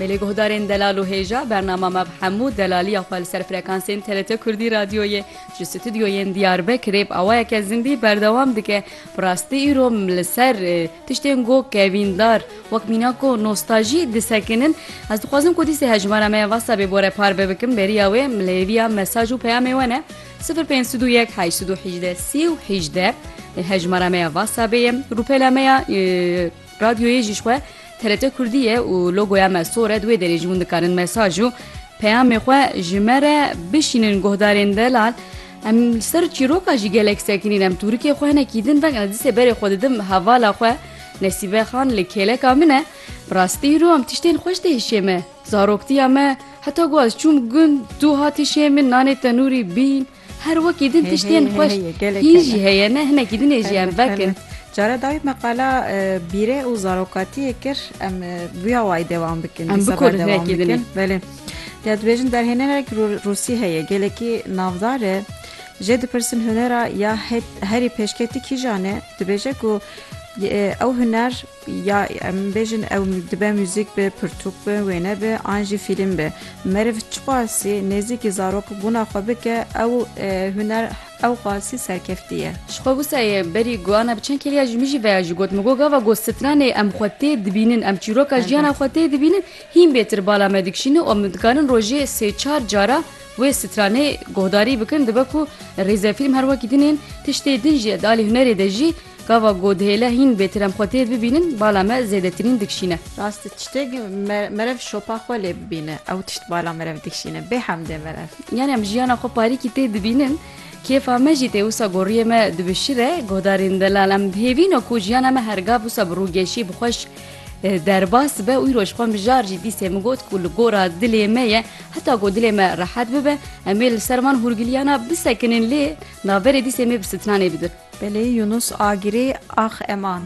Belê guhdarên delal û hêja bernama me bi hemû delaliya xwe li ser frekansên TRT Kurdî Radyoyê ji stûdyoyên Diyarbekirê bi awayeke zindî berdewam dike. Bi rastî îro li ser tiştên ku kevîndar wek mîna ku nostajî disekinin. Ez dixwazim ku dîsê hejmara me ya WhatsAppê bore parve bikim beriya wê li hêviya mesaj û peyamê we ne sifir pênc sed û yek heşt sed û hîjdeh sî û hîjdeh hejmara me ya WhatsAppê ye rûpela me ya Radyoyê jî ji xwe TRT Kurdî ye û logoya me sor e, di wê derê jî hûn dikarin mesaj û peyamê xwe ji me re bişînin guhdarên delal. Em li ser çîroka jî gelek sekinîn. Em tûrikê xwe hinekî din veng em disê berê xwe didim hevala xwe Nesîbe Xan li kêleka min e. Bi rastî îro em tiştên xweş tê hişê me. Zaroktiya me heta ku ez çûm gund tu hatî şê min nanê tenûrî bîn. Her wekî din tiştên xweş hîn jî heye ne hinekî din ê jiyan vekin. Care dayî me qala bîrê û zarokatiyê kir em vûya wayî dewam bikin. Em bikorin hinekî din. Belê. Ya dibêjin derhênerek Rûsî heye gelekî navdar e. Jê dipirsin hunera ya herî pêşketî kîjan e dibêje ku ew huner Ya em bêjin ew dibe muzîk be, pirtûk be, wêne be an jî fîlm be. Meriv çiqasî nêzîkî zarok bûna xwe bike ew huner ew qasî serkeftî ye. Ji xwe wisa ye berî guhana bi çend keriya ji min jî veya jî got. Min got gava ku stranê em xwe tê dibînin, em çîroka jiyana xwe tê dibînin hîn bêtir bala me dikişîne û em dikarin rojê sê çar cara wê stranê guhdarî bikin. Dibe ku rêzefîlm her wekî din ên tiştê din jî ye di alî hunerê de jî. Gava ku dihêle hîn bêtirem xwe tê bibînin bala me zêdetirîn dikişîne. Rast e tiştêk merev şopa xwe lê bibîne ew tişt bala merev dikişîne bê hemdê merev. Yanî em jiyana xwe parîkî tê dibînin kêfa me jî tê wisa goriyê me di bi şir e guhdarên delal em dihêvîne ku jiyana me her gav wisa bi rûgeşî bi xweş derbas be wîroj xwe mijar jî dîsê min got ku li gora dilê me ye heta ku dilê me rehet bibe em ê li ser van hûrgiliyana bisekinin lê Navberê dîsê mê bi sitnanê bidir. Belê Yunus Agirê ax eman.